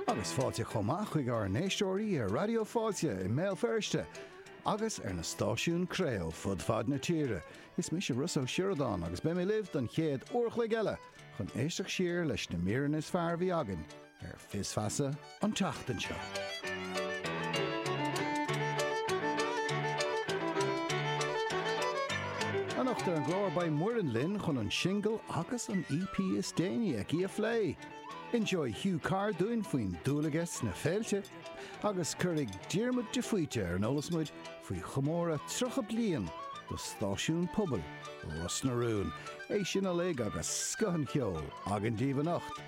Agus fáilte chomh maith chuig ár n-éisteoirí ar Raidió Fáilte i mBéal Feirste agus ar na stáisiúin raidió fud fad na tíre. Is mise Rossa Ó Sioradáin agus beidh mé libh don chéad uair chloig eile chun éisteacht siar leis na míreanna is fearr a bhí againn ar Fios Feasa an tseachtain seo. Anocht ar an gclár beidh Muireann linn chun an singil agus an EP is déanaí aici a phlé. Inseoidh Hugh Carr dúinn faoin dúil aige sna féilte. Agus cuirfidh Diarmuid de Faoite ar an eolas muid faoi chomóradh 30 bliain do stáisiún pobail Ros na Rún. É sin uilig agus scoth an cheoil againn daoibh anocht.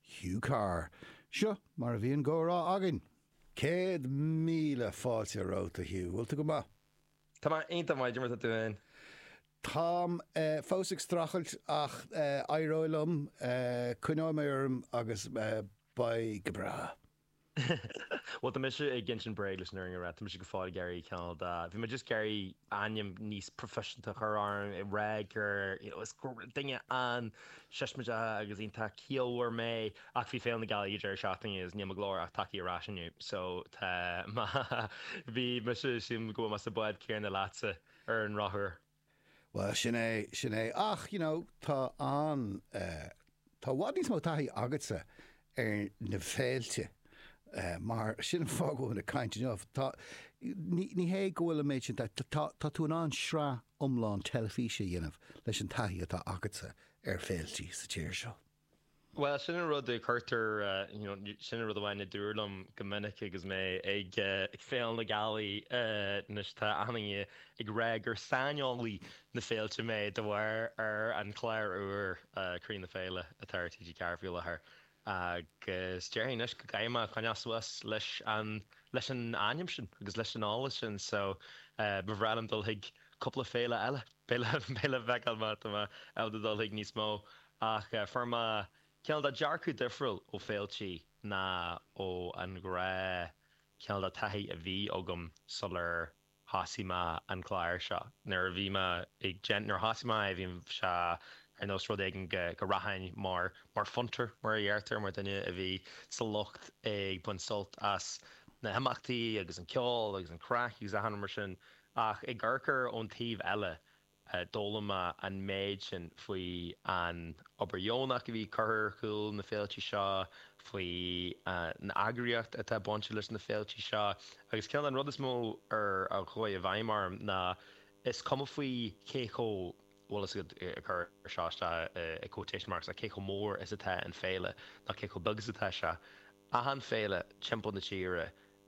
Hugh Carr. Seo mar a bhí an comhrá againn. Céad míle fáilte romhat, a Hugh. Bhfuil tú go maith? Tá mé iontach maith, Diarmuid, tú féin? Táim fós ag strachailt ach éireoidh liom. Coinneoidh mé orm agus beidh go breá. Bhuel, tá mise ag insint bréag leis an fhírinne a rá, tá mise go fóill ag iarraidh cineál de, bhí mé just ag iarraidh ainm níos proifisiúnta a chur orm, ag rá gur, you know, is duine an-seasmhach agus iontach ciallmhar mé, ach bhí Féile na Gealaí ag deireadh na seachtaine agus níl mo ghlór ach tagtha ar ais inniu, so tá, má bhí mise, sílim go bhfuil mé sa bád céanna leatsa ar an rothar. Bhuel, sin é, sin é. Ach, you know, tá an eh, tá i bhfad níos mó taithí agatsa ar na féilte eh, mar sin an fáth go bhfuil muid ag caint inniu. Tá, ní, ní hea go bhfuil an méid sin taithí, tá, tá tú in ann sraith iomlán teilifíse a dhéanamh leis an taithí atá agatsa ar féilte sa tír seo. Bhuel, sin an rud a chuirtear, you know, sin an rud a mbíonn á dúirt liom go minic agus mé ag Féile na Gealaí, anois tá achan duine ag rá gur saineolaí na féilte mé de bharr an chlár úr, Croí na Féile, atá ar TG4 faoi láthair agus déarfainn anois go gcaithfidh mé a choinneáil suas leis an, leis an ainm sin agus leis an eolas sin so ba bhreá liom dul chuig cúpla féile eile, beidh liom, beidh liom a fheiceáil má tá mé ábalta dul chuig níos mó. Ach fuair mé cineál de dearcadh difriúil ó fhéilte ná ó an ghnáth cineál de taithí a bhí agam sular thosaigh mé an clár seo. Nuair a bhí mé ag déan, nuair a thosaigh mé é, bhí sé ar nós rud éigin go go rachainn mar mar phunter mar a deirtear, mar duine a bhí sa slua ag baint sult as na himeachtaí agus an ceol agus an craic agus achan rud mar sin ach ag obair ón taobh eile D'fhoghlaim mé an méid sin faoi an obair dheonach a bhí curtha ar chúl na féiltí seo, faoi an eagraíocht atá bainte leis na féiltí seo agus ceann de na rudaí is mó a chuaigh i bhfeidhm orm ná is cuma faoi cé chomh, bhuel is dóigh cuir seo isteach i quotation marks ná cé chomh mór is atá an féile, ná cé chomh beag is atá seo, achan féile timpeall na tíre,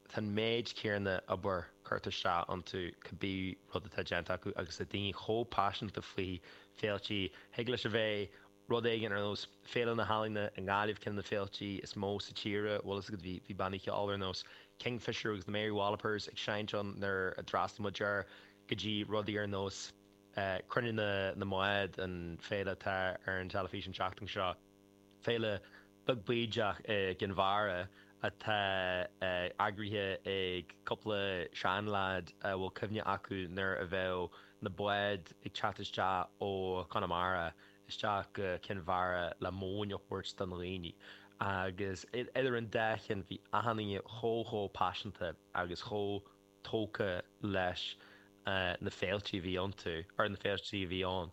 Tá an méid céanna obair curtha isteach iontu, cibé rud atá déanta acu agus tá daoine chomh paiseanta faoi féiltí. Thig leis a bheith rud éigin ar nós Féile na nEalaíon i nGaillimh, ceann de na féiltí is mó sa tír, bhfuil a fhios agat, bhí bannaí ceoil ar nós Kingfishr agus na Mary Wallopers ag seinnt ann nuair a d'fhreastal muid air, go dtí rudaí ar nós Cruinniú na mBád, an féile atá ar an teilifís an tseachtain seo, féile beag bídeach i gCinn Mhara atá eagraithe ag cúpla seanleaid a bhfuil cuimhne acu nuair a bheadh na báid ag teacht isteach ó Chonamara isteach go Cinn Mhara le móin a thabhairt do na daoine agus idir an dá cheann bhí achan duine chomh, chomh paiseanta agus chomh tógtha leis na féiltí a bhí iontu, ar na féiltí a bhí ann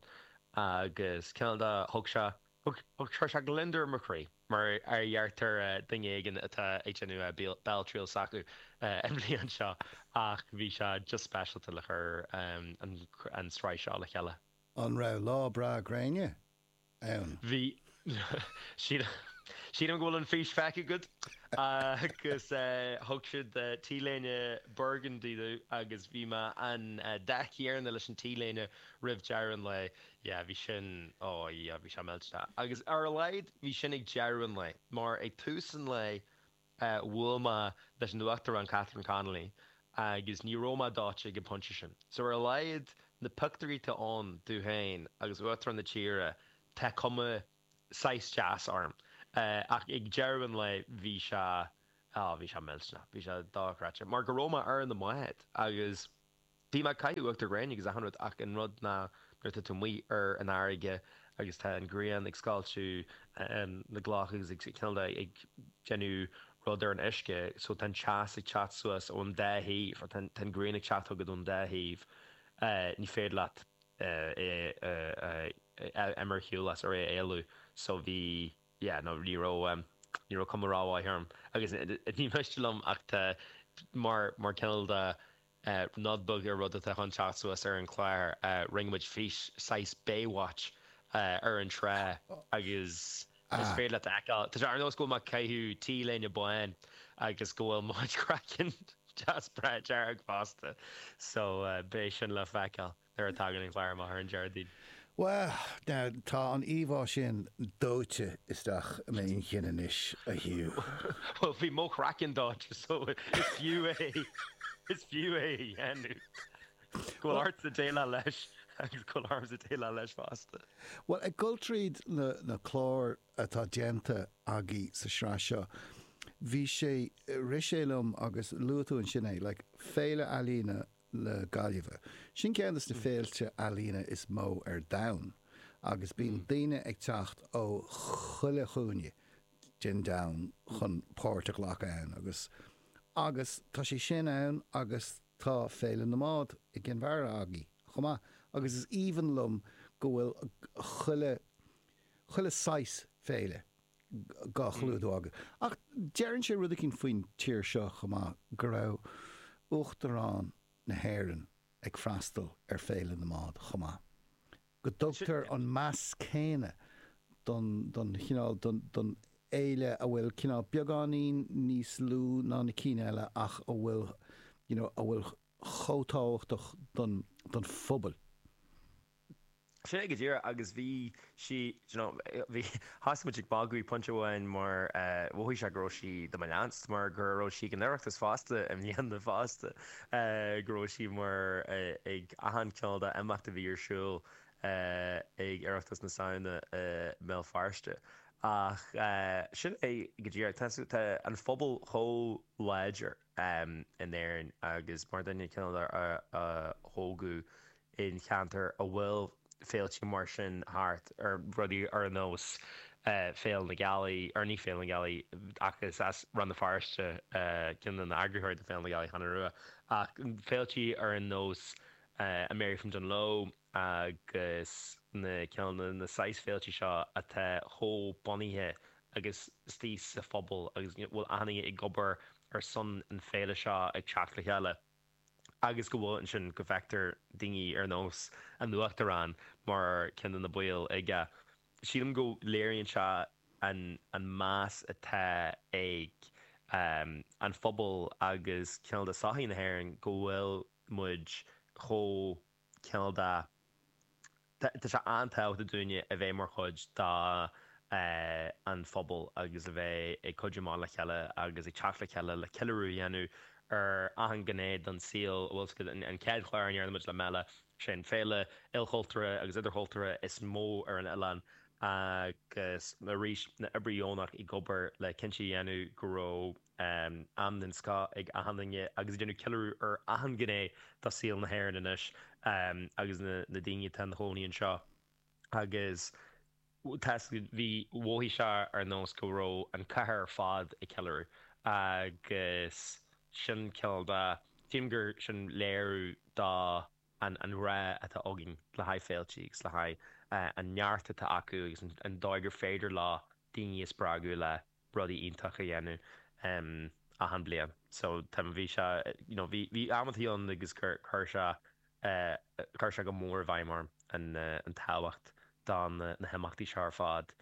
agus cineál de, thug sé. Thug sé, thug sé gliondar ar mo chroí, mar a deirtear, duine éigin atá ag déanamh béaltriail s'acu an bhliain seo, ach bhí sé just speisialta le cur an sraith seo le chéile. An raibh lá breá gréine ann? Bhí. Sílim go bhfuil an fhís feicthe agat agus thug siad T-léine burgundy domh agus bhí mé an dath céanna leis an T-léine roimh deireadh an lae. yeah bhí sin oh yeah bhí sé millteanach agus ar a laghad bhí sin ag deireadh an lae mar ag tús an lae bhuail mé leis an Uachtarán Catherine Connolly agus ní raibh mé dóite ag an bpointe sin so ar a laghad na pictiúirí atá ann domh féin agus Uachtarán na tíre tá cuma saghas deas orm ach ag deireadh an lae bhí sé oh bhí sé millteanach bhí sé dochreidte mar go raibh mé ar an mbád agus Bhí mé ag caitheamh uachtar gréine agus achan rud ach an rud ná nuair atá tú amuigh ar an fharraige agus tá an ghrian ag scoilteadh na gcloch agus ag cineál de ag déanamh rud ar an uisce so tá an teas ag teacht suas ón dá thaobh tá an ghrian ag teacht chugat ón dá thaobh ní féidir leat é a, mar a shiúl as, nó é a éalú so bhí. yeah no ní raibh em ní raibh cuma rómhaith orm agus ní miste liom ach tá mar mar cineál de eh nod beag ar rud atá chun teacht suas ar an chlár eh rinne muid fís saghas Baywatch eh ar an trá agus is ah féidir leat a fheiceáil tá sé ar nós go bhfuil mé ag caitheamh T-léine bán agus go bhfuil mo chraiceann deas breá dearg fosta so eh beidh sin le feiceáil. Nuair a thagann an Cladhaire Maith ar an Déardaoin. Bhuel, now, tá an íomhá sin dóite isteach i m'inchinn anois, a Hugh. Bhuel, bhí mo chraiceann dóite, so is fiú é, is fiú é a dhéanamh. Go bhfuil ortsa déileáil leis agus go bhfuil ormsa déileáil leis fosta. Bhuel, ag dul tríd na cláir atá déanta againn sa sraith seo, bhí sé, rith sé liom agus luaigh tú ansin é, like, Féile Ealaíne na Gaillimhe. Sin ceann de na féilte ealaíona is mó ar domhan agus bíonn daoine ag teacht ó chuile chúinne den domhan chun páirt a ghlacadh ann agus agus tá sé sin ann agus tá Féile na mBád i gCinn Mhara againn chomh maith agus is aoibhinn liom go bhfuil chuile, chuile saghas féile. dhá gclúdach againn. Ach deireann sé rud eicínt faoin tír seo chomh maith, go raibh Uachtarán na hÉireann ag freastal ar Féile na mBád chomh maith, go dtugtar an meas céanna don, don chineál, don, don fhéile a bhfuil cineál beagáinín níos lú ná na cinn eile ach a bhfuil, you know, a bhfuil chomh tábhachtach don, don phobal. Sin é go díreach, agus bhí sí, you know, bhí, thosaigh muid ag magadh pointe amháin mar mhothaigh sé go raibh sí do mo leanstan mar go raibh sí ag an Oireachtas fosta i mbliana fosta, go raibh sí mar, ag achan cineál de imeacht a bhí ar siúl ag Oireachtas na Samhna i mBéal Feirste. Ach sin é go díreach, tá, tá an phobal chomh láidir in Éirinn agus mar duine, cineál, a tógadh i gceantar a bhfuil féilte mar sin thart, rudaí ar nós Féile na Gealaí, or ní Féile na Gealaí, ach is as Rann na Feirste ceann de na eagraítheoirí do Féile na Gealaí Catherine Rua, ach féiltí ar nós an Mary from Dungloe agus na cineál de saghas féilte seo atá chomh bunaithe agus istigh sa phobal agus bhfuil achan duine ag obair ar son an féile seo ag teacht le chéile. agus go bhfuil ansin go bhfeictear daoine ar nós an Uachtarán mar ceann de na baill aige. Sílim go léiríonn sé an meas atá ag an phobal agus cineál de sochaí na hÉireann go bhfuil muid chomh. cineál de, tá sé an-tábhachtach dúinne a bheith mar chuid de an phobal agus a bheith ag cuidiú amach le chéile agus ag teacht le chéile le ceiliúradh a dhéanamh ar achan gné don saol a bhfuil sa gcuid, an chéad chlár a ndearna muid le Mela, sin féile ilchultúrtha agus idirchultúrtha is mó ar an oileán agus arís na oibrí dheonach ag obair le cinnte a dhéanamh go raibh. am den scoth ag achan duine agus ag déanamh ceiliúrtha ar achan ghné de saol na hÉireann anois agus na daoine atá ina chónaí anseo agus mhothaigh sé ar nós go raibh an chathair ar fad ag ceiliúradh agus sin cineál de, chím gur sin léiriú de an grá atá againn le haghaidh féiltí agus le haghaidh an neart atá acu agus an dóigh gur féidir leo daoine a spreagadh le rudaí iontacha a dhéanamh achan bliain so tá, bhí sé, you know, bhí, bhí amannaí ann agus gur, chuir sé, chuir sé go mór i bhfeidhm orm an, an tábhacht de na, na himeachtaí seo ar fad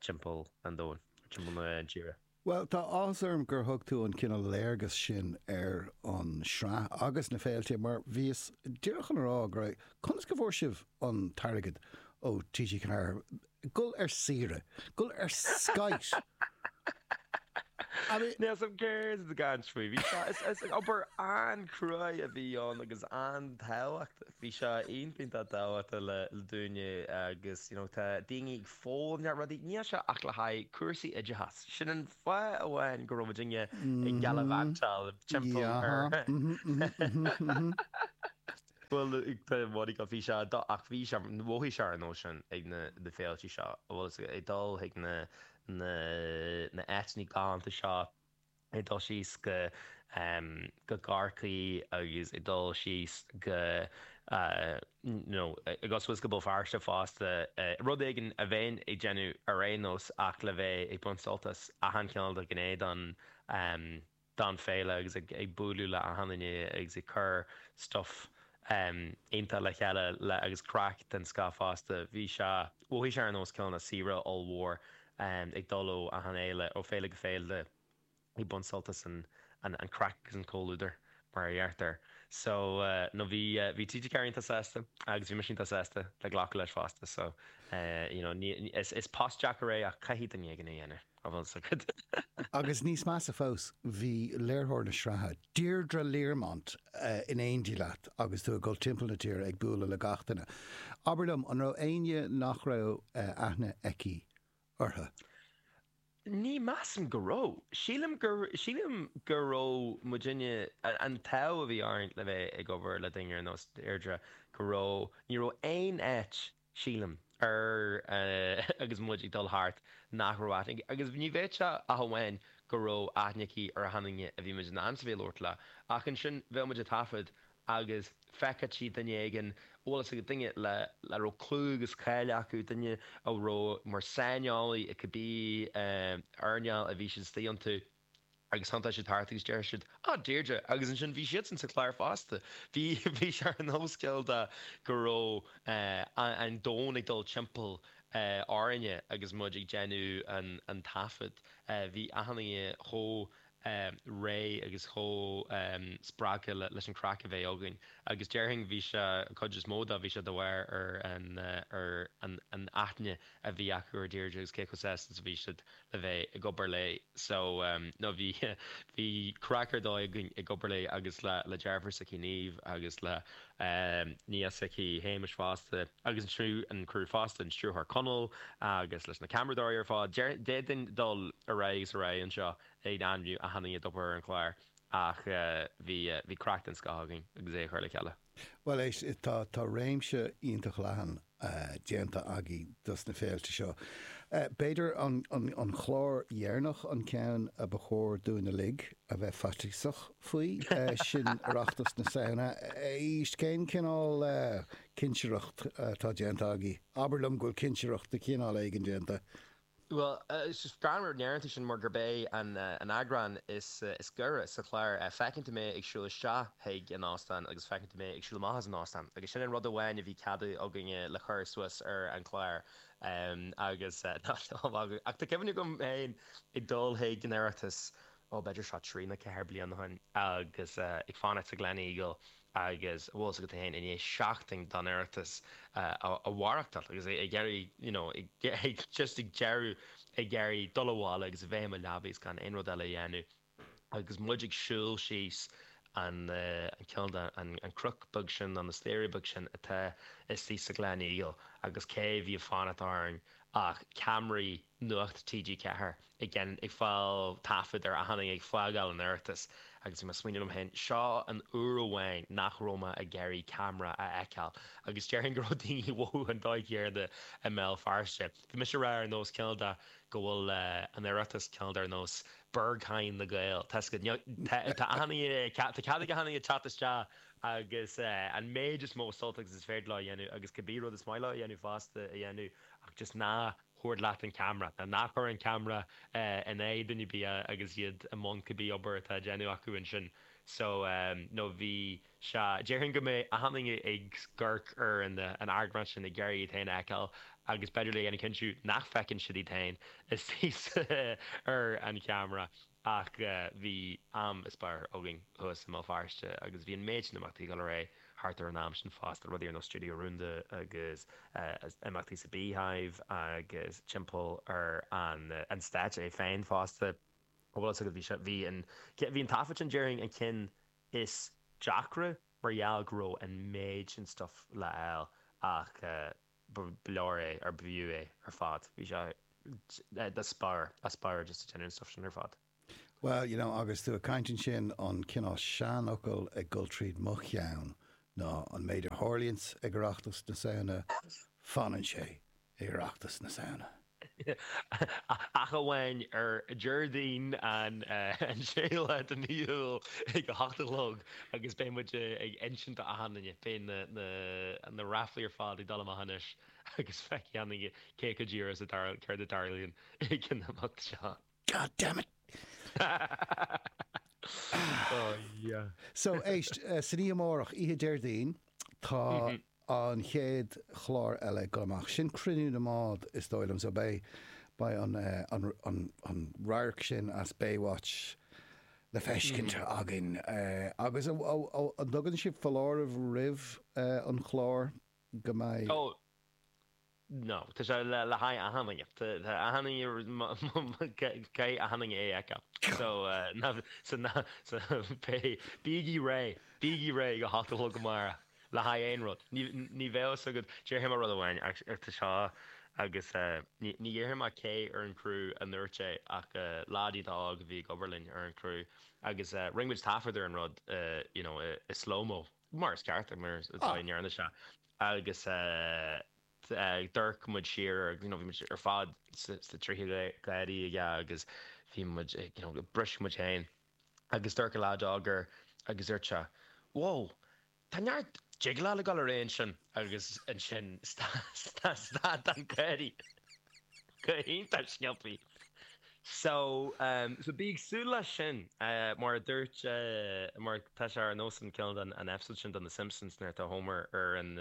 timpeall an domhain, timpeall na tíre. Bhuel, tá áthas orm gur thug tú an cineál léargas sin ar an sraith agus na féilte, mar bhíos díreach chun a rá go raibh, conas go bhfuair sibh an t-airgead ó TG4? Gul ar saoire! Gul ar Skype! I mean. Níl fhios agam céard atá tú ag caint faoi. Bhí sé, is obair an-chruaidh a bhí ann agus an-tábhachtach. Bhí sé iontach tábhachtach le daoine agus, you know, tá daoine ag foghlaim rudaí, níl sé ach le haghaidh cúrsaí oideachais, sin an fáth amháin go raibh muid ag galavantáil timpeall ar Bhuel, mhothaigh go, bhí sé, ach bhí sé, mhothaigh sé ar nós sin ag na féiltí seo, an bhfuil fhios agat, ag dul chuig na áiteanna galánta seo, ag dul síos go, em, go Corcaigh agus ag dul síos go, eh, no, ag dul suas go Béal Feirste fosta, eh, rud éigin a bheinn ag déanamh ar aon nós ach le bheith ag baint sult as achan chineál de ghné den, em, den Fhéile agus ag, ag bualadh le achan duine agus ag cur stuff, iontach le chéile le agus craic den scoth fosta. Bhí sé, mhothaigh sé ar nós cineál de saoire ollmhór ag dul ó achan fhéile, ó féile go féile ag baint sult as an an craic agus an comhluadar mar a deirtear. So no bhí bhí TG4 iontach sásta agus bhí mise iontach sásta le glacadh leis fosta so you know ní is is post deacair é ach caithfidh duine éigin a dhéanamh. an bhfuil fhios agat. Agus níos measa fós, bhí léirtheoir na sraithe, Deirdre Learmont, in éindí leat agus tú ag dul timpeall na tíre ag bualadh le gach duine. Abair liom, an raibh éinne nach raibh aithne aici orthu? Ní mheasaim go raibh. Sílim gur, sílim go raibh muidne, an t-ádh a bhí orainn le bheith ag obair le daoine ar nós Dheirdre, go raibh, ní raibh aon áit sílim, ar agus muid ag dul thart, nach raibh aithne aici, agus ní hé amháin go raibh aithne aici ar na haíonna a bhí muid in ann a bheith ag labhairt leo, ach ansin bheadh muid ag taifead agus d'fheicfeadh sí duine éigin, bhuel is ea, duine le, a raibh clú agus cáil acu, duine a raibh mar saineolaí i cibé earnáil a bhí siad istigh iontu. Agus thiontódh siad thart agus déarfadh siad, Ah, Deirdre! Agus ansin bhí siadsan sa chlár fosta. Bhí, bhí sé ar nós cineál de go raibh eh an domhan ag dul timpeall eh orainne agus muid ag déanamh an an taifead. Eh bhí achan duine chomh eh réidh agus chomh eh spreagtha le leis an craic a bheith againn. Agus déarfainn bhí sé, an cuid is mó de, bhí sé de bharr ar an eh ar an an aithne a bhí acu ar Deirdre agus cé chomh sásta is a bhí siad le bheith ag obair léi. So, no, bhí, bhí craic ar dóigh againn ag obair léi agus le, le deirfiúr s'aici Niamh agus le nia s'aici Shéamais fosta agus an criú, an criú fosta, an stiúrthóir Conall agus leis na ceamaradóirí ar fad. Deir, d'fhéadfainn dul ar aghaidh is ar aghaidh anseo ag ainmniú achan duine a d'obair ar an chlár ach bhí, bhí craic den scoth againn agus é a chur le chéile. Bhuel, éist, tá, tá réimse iontach leathan déanta agaibh dos na féilte seo. B'fhéidir an, an, an chlár dheireanach an ceann a ba chóir dúinn uilig a bheith faitíosach faoi, sin Oireachtas na Samhna. Éist, cén cineál cinsireacht atá déanta agaibh? Abair liom go bhfuil cinsireacht de chineál éigin déanta Bhuel, is greannmhar go ndeireann tú sin mar gurb é an eagrán is giorra sa chlár, feiceann tú mé ag siúl isteach chuig an óstán agus feiceann tú mé ag siúl amach as an óstán agus sin an rud amháin a bhí ceadaithe againne le cur suas ar an chlár agus tá mé ag magadh ach tá cuimhne agam féin ag dul chuig an Oireachtas, ó b'fhéidir seo trí nó ceathair bliana ó shin agus ag fanacht sa Gleneagle. agus an bhfuil a fhios agat féin i ndiaidh seachtain den Oireachtas a mhaireachtáil agus ag iarraidh, you know, ag just ag deireadh, ag iarraidh dul abhaile agus a bheith i mo leaba agus gan aon rud eile a dhéanamh agus muid ag siúl síos an cineál de an cnoc beag sin nó na staighre beag sin atá istigh sa Gleneagle agus cé a bhí ag fanacht orainn ach ceamaraí Nuacht TG4 ag déanamh, ag fáil taifead ar achan duine ag fágáil an Oireachtas agus bhí mé ag smaoineamh liom féin, seo an uair amháin nach raibh mé ag iarraidh ceamara a fheiceáil agus déarfainn go raibh daoine ag mothú an dóigh chéanna i mBéal Feirste. Bhí mise ag rá ar nós cineál de go bhfuil an Oireachtas cineál de ar nós Berghain na Gaeil, toisc go, tá, tá achan, tá cead ag achan duine teacht isteach agus an méid is mó sult agus is féidir leo a dhéanamh agus cibé rud is maith leo a dhéanamh fosta a dhéanamh ach just ná, tabhair leat an ceamara, ná ná cuir an ceamara in aghaidh duine ar bith agus iad i mbun cibé obair atá á dhéanamh acu ansin so ehm no bhí sé, déarfainn go mbeidh achan duine ag amharc ar an an segment sin ag iarraidh iad féin a fheiceáil agus b'fhéidir le dhéanamh cinntiú nach bhfeiceann siad iad féin is thíos ar an cheamara. Ach bhí an-spórt againn thuas i mBéal Feirste agus bhí an méid sin imeachtaí ag dul ar aghaidh thart ar an am sin fosta, rudaí ar nós Studio Rúnda agus imeachtaí sa Beehive agus timpeall ar an stáitse é féin fosta. An bhfuil fhios agat, bhí seo, bhí an, bhí an taifead sin déarfainn an ceann is deacra mar gheall go raibh an méid sin stuff le fháil ach eh, Ba leor é ach b'fhiú é ar fad. Bhí sé an-spórt, an-spórt just ag déanamh an stuff sin ar fad. Well, you know, agus tú ag caint ansin, an cineál seanfhocal ag dul tríd mo cheann ná an méid a tharlaíonns ag Oireachtas na Samhna, fanann sé ag Oireachtas na Samhna. ach amháin ar Dhéardaoin an 6 lá de Mhí Iúil ag a hocht a chlog agus beidh muid ag insint achan duine faoi na ráflaí ar fad ag dul amach anois agus feicfidh achan duine cé go díreach is céard a dtarlaíonn ag an imeacht seo. God damn it! So, éist, san oíche amárach, oíche Déardaoin, tá an chéad chlár eile ag dul amach. Sin Cruinniú na mBád, is dóigh liom. So, beidh an radharc sin as Baywatch le feiscint againn. Agus an dtugann sibh foláireamh roimh an chlár go mbeidh...? no. Tá sé le haghaidh achan duine. Tá achan duine caithfidh achan duine é a fheiceáil. So ná so ná so pé bígí réidh, bígí réidh go hacadúil go maire le haghaidh aon rud. Ní ní bheidh fhios agat, déarfaidh mé rud amháin ach tá sé agus ní ní dhéarfaidh mé cé ar an gcriú a ndúirt é ach leaid iontach óg a bhí ag obair linn ar an gcriú agus rinne muid taifead ar an rud you know i slow-mo. mar is ceart, mar is dóigh a ndearna sé, agus d'amharc muid siar ar, you know, bhí muid ar fad sna trithí gáirí aige agus bhí muid ag, you know, briseadh muid féin agus d'amharc an leaid óg air, agus dúirt sé, wow, tá neart jiggleáil ag dul ar aghaidh ansin, agus ansin stad an gáirí. Go hiontach sciobtha! So, so bí ag súil leis sin. Mar a dúirt, mar tá sé ar nós an ceann den an episode sin de The Simpsons nuair atá Homer ar an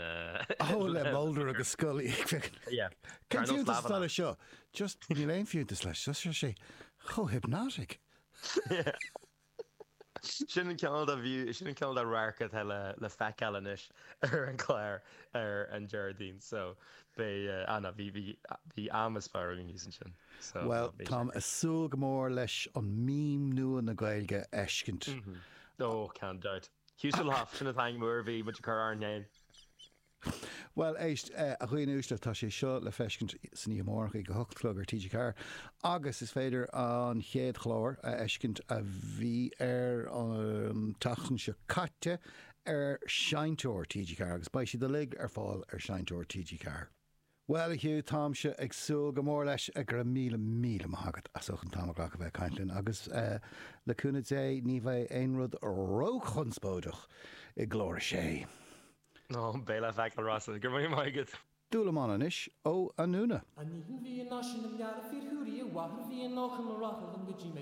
Ó, le Mulder agus Scully ag fiafraí. Yeah. Cén fiúntas atá leis seo? Just, níl aon fiúntas leis, just, tá sé chomh hypnotic. Sin an cineál view, sin an cineál radharc atá le, le feiceáil anois ar an gclár ar an Déardaoin so beidh eh, ah no bhí, bhí, bhí an-spórt againn thíos ansin so Bhuel, bhí sé táim ag súil go mór leis an meme nua na Gaeilge a fheiscint. Ó, gan dabht. Hasselhoff, sin an t-ainm úr a bhí muid ag cur orainn féin. Bhuel, éist, a dhaoine uaisle, tá sé seo le feiscint san oíche amárach ag a hocht a chlog ar TG4, agus is féidir an chéad chlár a fheiscint, a bhí ar an tseachtain seo caite, ar Seinnteoir TG4, agus beidh siad uilig ar fáil ar Seinnteoir TG4. Bhuel, a Hugh, táimse ag súil go mór leis, go raibh míle míle maith agat as ucht an t-am a ghlacadh a bheith ag caint linn, agus le cúnamh Dé, ní bheidh aon rud róchonspóideach i gclár a sé! Ó, beidh le feiceáil, Rossa, go raibh míle maith agat! Dúlamán anois ó Anúna. A 'níon mhín ó sin anall na fir shúirí, a mháthair mhín ó cuir na roithleán go dtí mé.